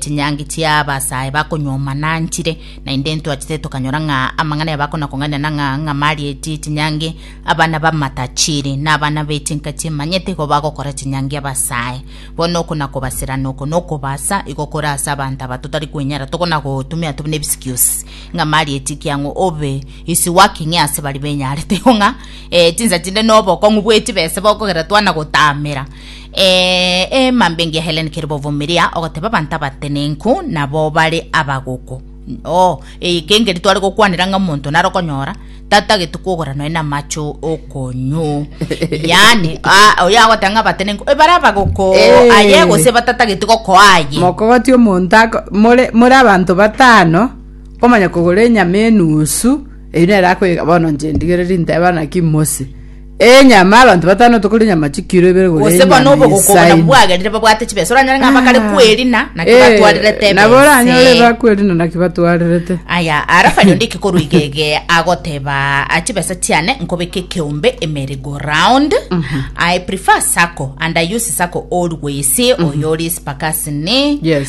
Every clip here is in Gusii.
Chinyangi chi'abasae bakonyuoma nanchire, naende ntwachete tokanyora ng'a amang'ana yabo akona kong'ainana ng'a ng'amari eti chinyangi abana b'amatachiri, na abana be chinka chimanyete igo bagokora chinyangi abasae. Bono oko na kobaserana oko na okobasa igo kore ase abanto aba totari kwenyara, tokona gotumia tobe nebisikiosi. Ng'amari eti kiang'u obe is working ase baria benyarete igo ng'a chinsa chinde nobokong'u bwechibesa bokogerera twana gotamera. Ee, mambingi ya Helen Kiribovumiria, ogoteba abanto abatenenku nabo bare abagoko. Oh, eye kengeri tware gokwanera ng'a omonto nare okonyora tatagete kwogora nonya na amache o- okonyu yani ah, oyo agoteba ng'a abatenenku ebare abagoko Eh. aye gose batatagete gokoa aye mokogoti omonto ako- more more abanto batano omanya kogora enyama enusu eyi nere akoyeka bono nche ndigereri nteba naki mose Enyama, abanto batano tokoria nyama chikiro ibere gore Gose bono enyama obogoko buna ensaini. bwagerire babwate chibesa oranyore ng'a bakare Ah. kwerina naki Eh, batwarerete nabo ebese. oranyore bakwerina naki batwarerete aya arafa riondo ikikorwa igege agoteba "Ah, chibesa chiane nkobeka ekeombe emeri go round i prefer sacco and i use sacco always oyo ori spakasini Yes.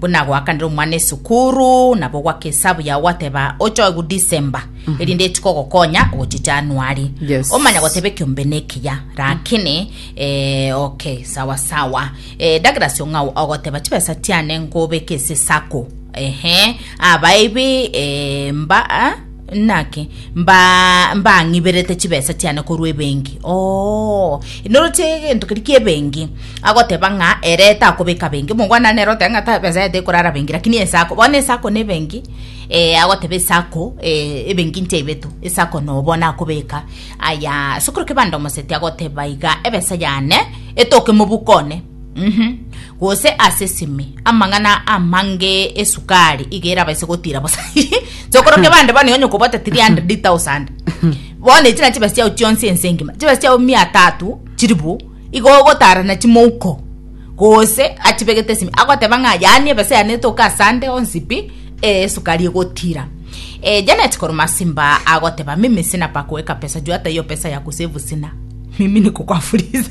Buna goakanire omwana esukuru, nabo gwaka esabu yao gwateba ochoegu December, erinde etuke ogokonya ogochia January. Yes. Omanya goteba ekiombe ne ekiya, rakini eh, okay, sawa sawa. Eh, Douglas Ong'au ogoteba chibesa tiane nkobeke ase sacco. Ehe, aba ibi eh, mba ah, Naki mbang'iberete chibesa chiane korwa ebenki. Oo, inoroche egento keria ki'ebenki, agoteba ng'a ere takobeka benki. Omongwana nere oteba ng'a besa yaye tekorara benki, lakini esako, bono esako na ebenki, agoteba esako, ebenki nchaibetu, esako nobo nakobeka. Aya, ase okorokebanda omoseti agoteba iga, ebesa yane etoke mobuko one. Mhm. gose ase esimi amang'ana amange esukari iga erabaise gotira bosa sokoroke bande bono onye okobota 300000 bono echi nachi chibesa chiao chionsi ense engima chibesa chiao mia tatu chiribu igo ogotara nachi mouko gose achibegete esimi agoteba ng'a yaani ebesa yane etoke asande onsi pi eh, esukari egotira eh, janet koroma simba agoteba mimi sina pa kuweka pesa juu hata hiyo pesa ya kusevu sina mimi niko kwa fuliza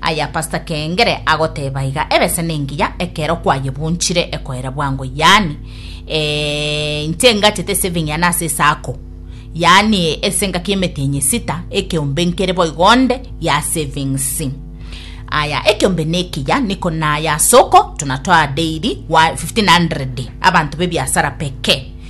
Aye Pastor Kengere agoteba iga, Ebese nengiya ekero kwayebunchire ekoera bwango yaani ee inche ngachete saving yane ase esako yaani ase engaki emete enya esita ekeombe nkere boigo onde ya savings aya ekeombe nekiya niko naya asoko tunatoa daily 1500 abanto bebiasara pekee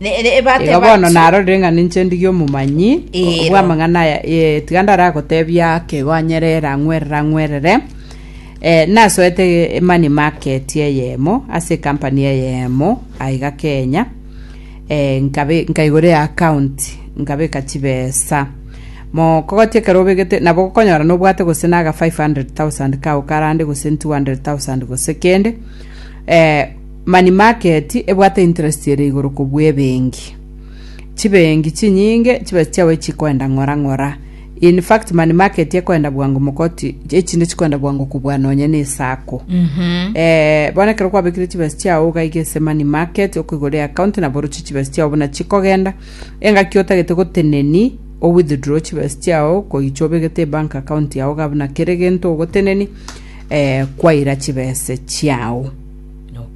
Igo bono narorire ng'a ninche ndige omomanyi Eero. bw'amang'ana aya, ee, tiga ndaragotebia akegonyera erang'werere ang'werere, eh, nasoete mani market eyemo ase ekampani eyemo aiga Kenya, eh, nkabe nkaigora eaccount nkabeka chibesa mokogoti ekero obegete nabo okonyora nobwate gose na aga 500,000 kao karande gose 200,000 gose kende, eh, Mani market ebwate interest ere igoro kobua ebenki. Chibenki chinyinge chibesa chiabo echigoenda ng'ora ng'ora. In fact mani market ekoenda bwango mogoti echinde chigoenda bwango kobua nonye ne esako. Eh, bono ekero kwabekire chibesa chiao ogaiga ase mani market okoigora eaccount nabo oroche chibesa chiao buna chikogenda. Engaki otagete goteneni o withdraw chibesa chiao koicha obegete ebank account yao iga buna kere gento ogoteneni eh kwaira chibesa chiao.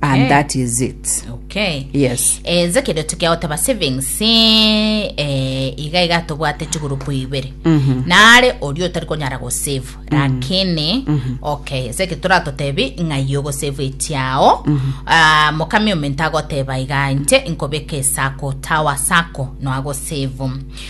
and that is it okay yes enze eh, kende tukiagoteba savings eh, iga iga tobwate chigurupu ibere mhm. nare oria otari konyara gosave mhm. lakini mhm. okay enze ke turatotebi ng'ai ogosave echiao ah, mokami ominto agoteba iga inche nkobeka esako tawa sako noagosave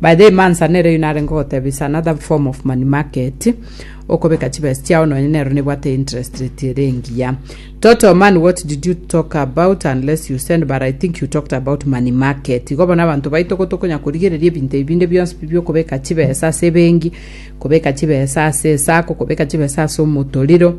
By the way, Mansa nere oyio narenge ogoteba is another form of money market okobeka chibesa chiao nonye nero nebwate interest rate ere engiya. Toto man what did you talk about unless you send but I think you talked about money market. Igo bono abanto baito igo tokonya korigereria ebinto ebi binde bionsi pi biokobeka chibesa ase ebengi, kobeka chibesa ase esako, kobeka chibesa ase omotoriro,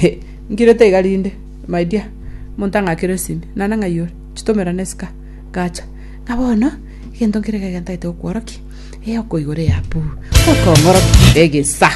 He! Nkirete iga rinde, my dear. Omonto ang'akire esimi, naende ng'ai ore? Chitomera ne esika. Gacha. Ng'a bono, egento nkere ekega ntaete gokworokia, ee okoigora eapu, gotong'orokia egesa.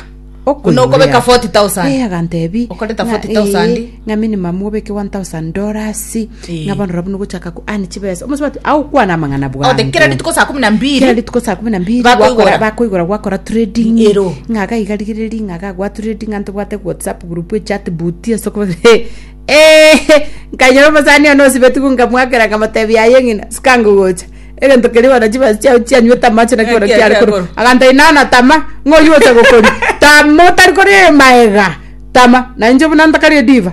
Buna okobeka Ee, 40,000. agantebia. Okoreta ng'a, 40,000. ee, ng'a minimum obeke 1,000 dollars. Eh. nabono rabu nogochaka ko ani chibesa omosubati agokwana amang'ana bwango Ote kera rituko saa kumi na mbiri. kera rituko saa kumi na mbiri Bakoigora. gwakora bakoigora gwakora trading Ero. ng'aka igarigireri ng'aka gwa trading anto bwate whatsapp group echat boot esoko he ehe nkanyora omasani one osibeti gu nkamwakera nkamotebi yaye ng'ina sikango gocha egento keri bono chibesa chiao chianywete amache naki bono Ekia kiare korwa kiagoro. aganta inana tama ng'oyote gokori tama otari kori maega tama na inche buna ntakari ediva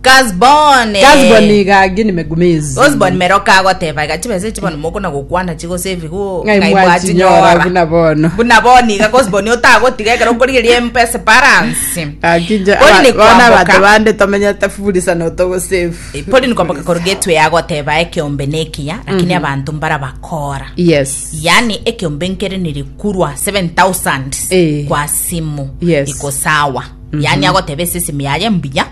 Gazbone. Gazbon niga agini megumezi. Gazbon meroka agoteba iga chibesa echi bono mokona gokwana chigose ebigo Ng'ai ng'ai mwachinyora mwachinyora. buna bono. Buna bono iga Gazbon otagotiga ekero okorigeria empesa balance. Akinje Poli ni bona kwamboka. abanto bande tomenyete furisa notogosefu. Poli ni kwamboka korwa gateway agoteba ekeombe ne ekiya lakini abanto mbara bakora. Yes. yani ekeombe nkere nirikurwa 7000 Eh. kwa simu Yes. iko sawa yani agoteba esesemi yaye mbuya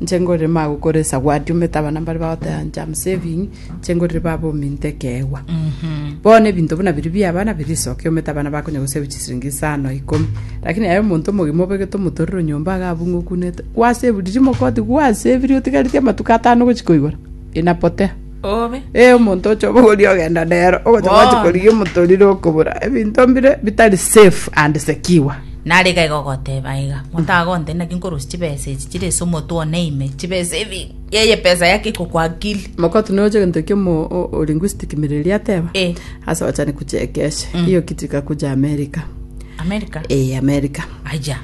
Inche ngorema gokora esawadi omanyete abana mbare bagoteba inche am saving inche ngorire baba ominto ekeegwa bono ebinto buna biria bia abana birisokia omanyete abana bakonya gosave chisiringi isano ikomi lakini aye omonto omogima obegete omotorero nyomba iga abunga okunete gwasave riria mogoti gwasavirie otigareti amatuko atano gochia koigoro inapotea Obe. Eh, omonto oche obogoria ogenda nero ogocha Bono. gwachi korigia omotorire okobura ebinto mbire bitari safe and secure Nare gaiga ogoteba iga. Motagonte naki nkorosia chibesa echi chire ase omotwe one ime. Chibesa ebi. Yeye pesa yake iko kwa akili. mokotu noche gento kiomo o- o linguistic mireri ateba Eh. ase ochani kuchekeshe hiyo kitu ikakuja amerika America. eh amerika Aja.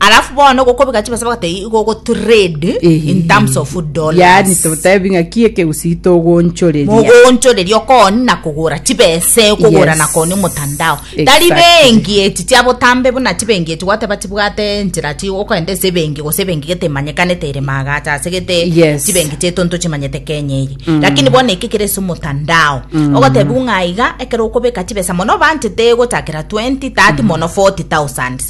alafu bono gokobeka chibesa bagateba igo ogotrade in terms of yani dollars totebi ng'a ki ekegusii togonchoreria mogonchoreria okoni na kogora chibesa okogora Yes. na koni omotandao tari Exactly. bengi echi chia botambe buna chibengi echi gwateba chibwate enchera chi okoenda ase ebengi gose ebengi gete emanyekanete ere magacha ase gete Yes. chibengi chiaito ntochimanyete kenya eye lakini bono eke kere ase omotandao ogotebiwa ng'a iga ekero okobeka chibesa mono obanchete gochakera 20 30 mono 40000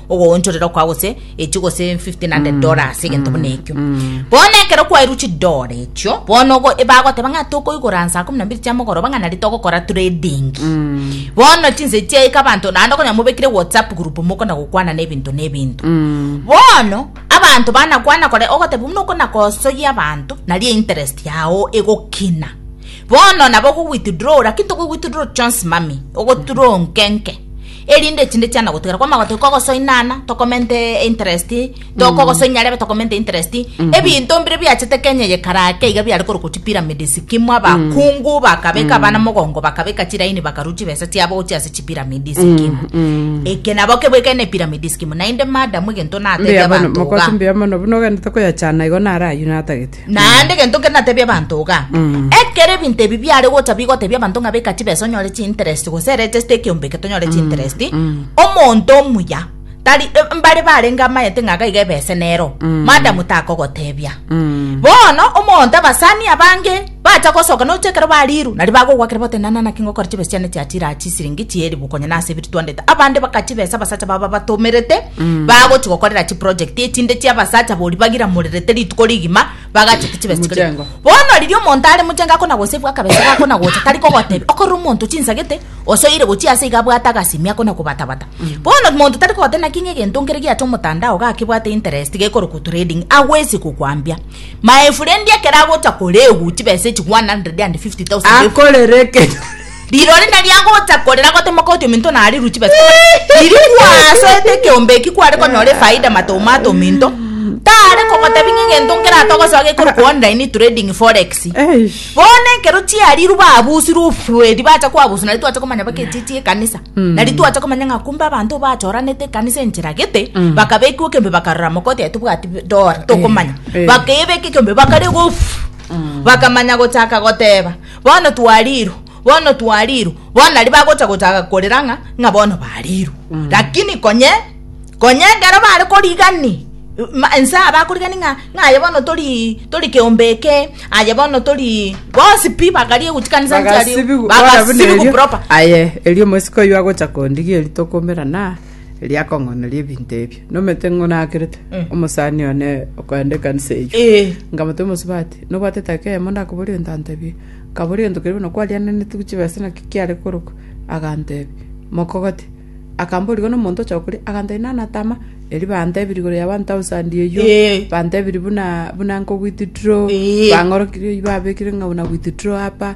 ogoonchorera okwa gose echi gose 1500 dollars egento buna ekio bono ekero kwairwe chidora echio bono ogo ebagoteba ng'a tokoigora nsa kumi na mbiri chia mogoroba ng'a nario togokora trading bono chinsa chiaika abanto naende okonya mobekire whatsapp group mokona gokwanana ebinto na ebinto bono abanto banakwana kore ogoteba buna okona gosoyia abanto nario interest yao egokina bono nabo ogo withdraw lakini tokoigwithdraw chionsi mami ogoturoo nke nke Erinde chinde chiana gotigara kwa magote kogosoinana tokomente interest tokogosoinya rebe tokomente interest ebinto mbire biachete Kenya ye karake iga biare korokwa chi pyramid sikimwa bakungu bakabeka abana mogongo bakabeka chiraini bakaru chibesa chiabo gochia ase chi pyramid sikimwa eke nabo kebwekene ne pyramid sikimwa naende madam egento natebia Mbuya mono, abanto mokosi iga mbuya mono, buna ogende tokoyachana igo naro aywo natagete. Naende egento kere natebie abanto iga, ekero ebinto ebi biare gocha bigotebia abanto ng'a beka chibesa onyore chinterest gose register ekeombe eke tonyore chinterest, omonto omuya tari e- mbare barenge amaete ng'a iga iga ebese nero, madam takogotebia. Bono omonto abasani abange bacha gosoka noche ekero bariru nari bagogoakera bagotebi nana naki ngokora chibesa chiane chiachire aa chisiringi chielifu konya nase ebiri twandete, abande baka chibesa abasacha babo babatomerete, bagochi gokorera chiproject echinde chiabasacha bori bagiramorerete rituko rigima bagachete chibesa chikore Mochengo. bono riria omonto are mochenga akona gosave akabesa gakona gocha tari kogotebia okorora omonto chinsagete osoire gochia ase iga abwate agasimi akona kobatabata bono omonto tari kogotebia naki ng'a egento nkere giacha omotandao gakebwate interest gekorokwa trading agwesi kokwambia my friend ekero agocha korewu chibesa echi 150,000 efu- akorere ekero Rirori nari agocha korera gotemoka oti ominto nari ruchi bati komorera. Riria kwasoete ekeombe eki kware konyora efaida matomato ominto tare kogotebi ng'a egento nkerate ogosoa gekorokwa online trading forex. Eish. Bono ekero chiariru babusirwe ofwedi bacha kwabuswa nari twacha komanya baka echichi ekanisa nari twacha komanya ng'a kumbe abanto bachoranete ekanisa enchera gete bakabekiwa ekembe bakarora moka oti aye tobwati dora tokomanya Eh. bakebeka ekembe bakarega off bakamanya gochaka goteba Bono twariirwe, bono twariirwe. Bono nario bagocha gochaka korera ng'a ng'a bono bariirwe. Mm. Lakini konye konye ekero bare korigani ense aba akorigani ng'a ng'a aye bono tori tori keombe eke aye bono tori bonsi pi bakarie guchikanisa nchari bakasibigu proper aye erio mosiko yo agocha kondigia eritokomera na riakong'oneria ebinto ebio. Nomete ng'o nakerete omosani one okoenda ekanisa eyio. Eh. Nkamotebia omosubati, nobwate etageka eyemo ndakoboria egento antebie. Nkaboria egento keria bono kwariananeti gochia chibesa naki kiare korokwa? Agantebia, mokogote. Akamborigwa igo nomonto ocha gokoria, agantebia nana tama, erio bantebirie igoro ya one thousand eyio, Eh. bantebirie buna buna nko withdraw, Eh. bang'orokirie oyio babekire ng'a buna withdraw hapa,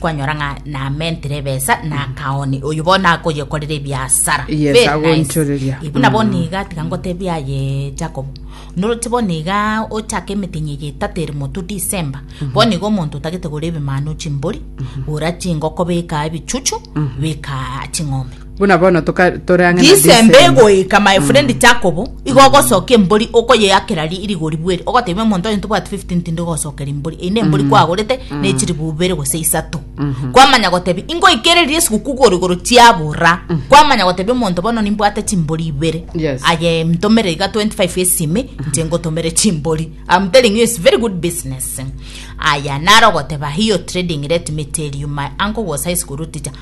Kwanyora ng'a namentire ebesa na akaoni, oyio bono akoyekorera ebiasara. Yes, Very agoinchoreria. nice. Buna bono iga tiga ngotebia aye Jacob. Noroti bono iga ochake emetinyi eye etato ere motwe December. Bono iga omonto otagete gora ebimanu chimbori, gora chingoko beka ebichuchu, beka ching'ombe. Buna bono toka- tore ang'e na Disemba Disemba. egoika my friend Mm. Jacob igo ogosoka embori okoyeakera ri- rigori bweri ogotebia omonto oyo ntobwati 15 tindi gosokera embori eyio na embori Mm. kwagorete Mm. na echiribu ibere gose isato Mhm. kwamanya gotebia ingoikereria esiguku gorigoro chiabora Mhm. kwamanya gotebia omonto bono nimbwate chimbori ibere Yes. aye ntomere iga 25 esime inche ngotomere chimbori I'm telling you it's very good business aya naro goteba hiyo trading let me tell you my uncle was high school teacher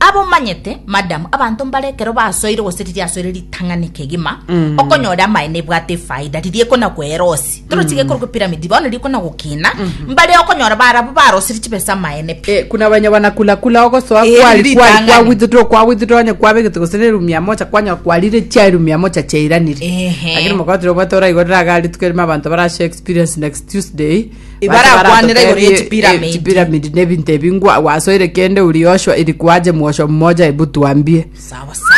Abe omanyete, madam, abanto mbare ekero basoire gose riria asoire ritang'ani kegima, okonyora amaene ebwate efaida, riria ekona kwera osi. Toro tiga ekorokwa epiramidi, bono riria ekona gokina, mbare okonyora barabwo barosire chibesa amaene pi. Eh, kuna banya bana kula kula ogosoa Eh, kwari riri kwari tang'ani. kwa withdraw kwa withdraw onye kwabegete gose ne room ya mocha kwanya kwarire chia room ya mocha cheiranire Ehe. lakini mokotire obwate oraigo ragari tukerima abanto barashe experience next tuesday Barakwanera igoro ye chipiramidi. chipiramidi na ebinto ebi ngwa gwasoire kende uri Yoshua iri kwaje mwosho mmoja ebu twambie sawa sawa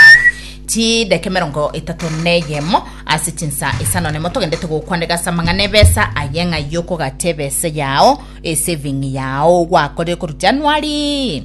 chideke merongo etato neyemo ase chinsa isano nemo togendete gokwanega ase amang'ana ebesa aye ng'a yokogata ebesa yao esaving yao gwakorire koru januari